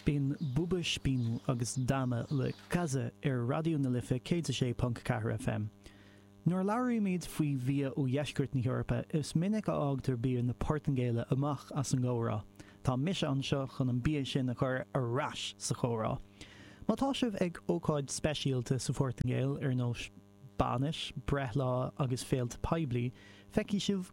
Bíonn Boba, Spin agus Drama le Cazza ar Raidió na Life 106.4 FM. Nuair a labhraímid faoi bhia ó dheisceart na hEorpa, is minic a fhágtar bia na Portaingéile amach as an gcomhrá. Tá mise anseo chun an bia sin a chur ar ais sa chomhrá. Má tá sibh ag ócáid speisialta sa Phortaingéil, ar nós bainis, breithlá agus féilte poiblí, feicfidh sibh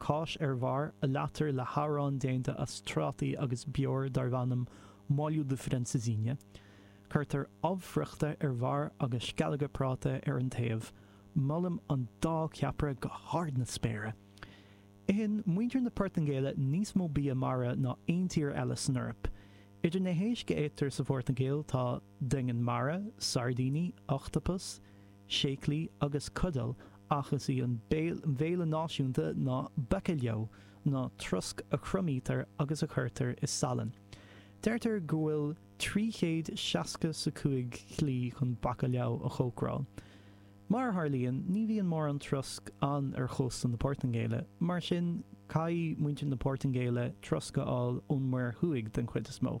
Cáis ar bharr a leáitear le hanlann déanta as trátaí agus beoir darbh ainm molho de francesinha. Cuirtear ubh friochta ar bharr agus sceallóga práta ar an taobh. Molaim an dá cheapaire go hard na spéire. Itheann muintir na Portaingéile níos mó bia mara ná aon tír eile san Eoraip. Idir na héisc a fhaightear sa Phortaingéil tá. doingean mara, sairdíní, ochtapas, séaclaí agus cudail ach is í an bhéile náisiúnta ná bacalhau, nó trosc a thriomaítear agus a chuirtear i salann. Deirtear go bhfuil trí chéad seasca 's a cúig shlí chun bacalhau a chócaráil. Mar a tharlaíonn, ní bhíonn mórán trosc ann ar chósta na Portaingéile, mar sin caithfidh muintir na Portaingéile trosc a fháil ón Muir Thuaidh den chuid is mó.